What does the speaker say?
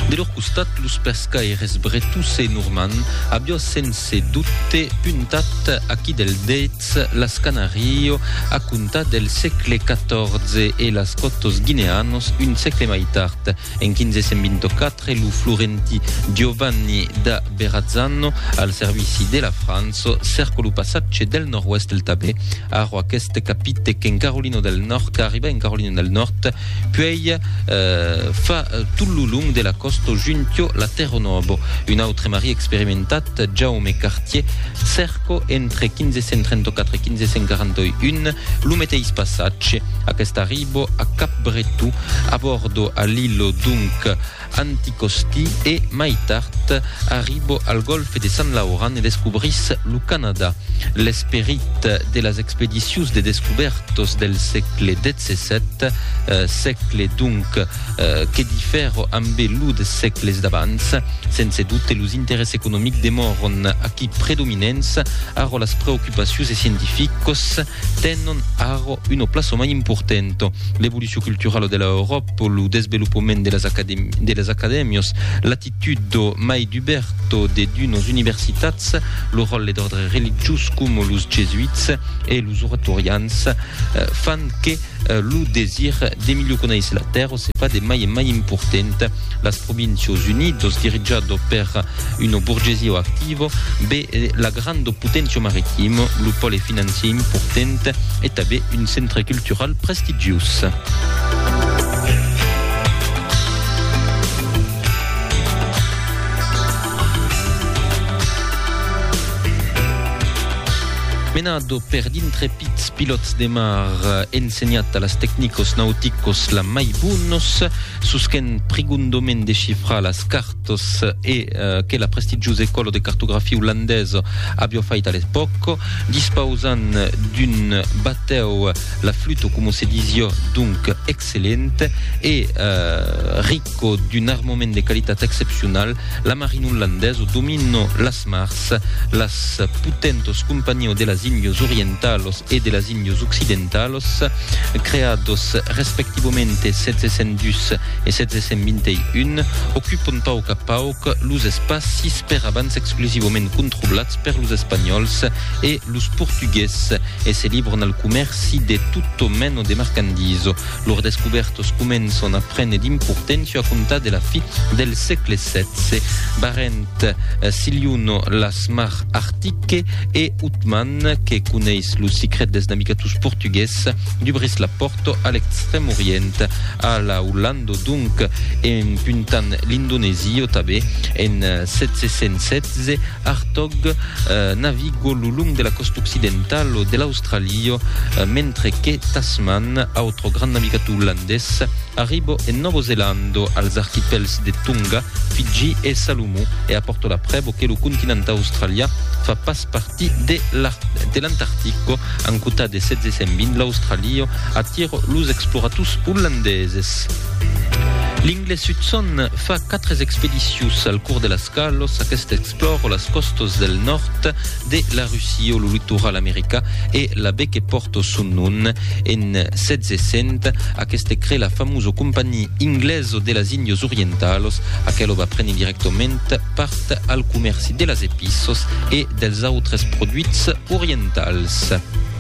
De lor costat, los pescaires bretós e normands aviá sense dobte puntat aquí del dets las Canàrio a comptar del sègle XIV e las còtos guineanos un sègle mai tard. En 1524, lo florentí Giovanni da Verrazzano, al servici de la França, cerca lo passatge del nòrd-oèst del Tabè, arro aqueste capite qu'en Carolina del Nòrd, qu'arriba en Carolina del Nòrd, Puèi fa tot lo long de la còsta juntio la Terro Nobo, un autre marí experimentat, Jaume Cartier, Cerco, entre 1534 e 1541, lo meteis passatge. Aquest arribo a Cap Bretó, abòrdo a l'illo, donc, Anticosti e, mai tard, arribo al Golfe de Sant Lauran e descobris lo Canadà. L'esperit de las expedicions de descubèrtos del sègle xvii, sègle, donc, que difero ambe lo des sègles d'abans. Sense dubte, los interès economics demòron aquí predominents, arro las preocupacions e scientificos, tenon arro un o plaço mai important. L'evolucion culturala de la Euròp, lo desvelopament de las, academ de las acadèmias, l'atitut do mai duberto de d'unas universitats, lo ròtle d'òrdre religiós coma los jesuits e los oratorians, fan que, Lo desir de milhor conéisser la tèrra se fa de mai en mai important. Las Provincios Unidos, dirijado per una borgesia activa, be la granda poténcia maritima, lo pòle financier important e tanbe un centre cultural prestigiós. Menado per dintre. Pitz pilòts de mar, ensenhat a las tecnicos nauticos la mai bonos, sus qu'en prigundomen de chifrar las cartos e que la prestigiosa ecola de cartografia olandesa avió fait a l'epòc, dispausant d'un batèu la fluto, coma se disió, donc excellent e ric. Qu'o d'un armament de qualitat excepcional, la marina olandesa o dominò las mars, las potentos companios de las Índios Orientalos e de las Índios Occidentalos, creados respectivamente 1702 e 1721, ocupon pauc a pauc los espacis per abans exclusivament controlats per los Espanhòls e los Portugués e se libron al comèrci de tot mena de marcandisa. Lors descubèrtos començon a prene d'importància a comptar de la fi del sègle xvi. Barent, Siliuno, las Mar Artique e Utman, que coneis lo sicret dels navigators portugués, dubrís la pòrta a l'Extrèm Orient, a la Ollanda donc, en puntant l'Indonesia o tanben, en 716, Hartog naviga lo long de la còsta occidentala de l'Austràlia. Tralio, mentre que Tasman, autre grand navigator olandés, arribo en Novo Zelando, als archipèls de Tonga, Fiji e Salomó, e apòrto la prèvo que lo continent australià fa pas partir de l'Antartico. En cota de 1620, l'Australio atira los explorators olandeses. L'inglés Hudson fa 4 expedicions al cors de las qualos aqueste explòra las còstas del nòrd, de la Russia o lo litoral americà e la be que pòrto son nom en 1600 aqueste crée la famoso compagnie inglèso de las Indios orientalos aquelo va prene directament part al comèrci de las epissos e dels autres produits orientals.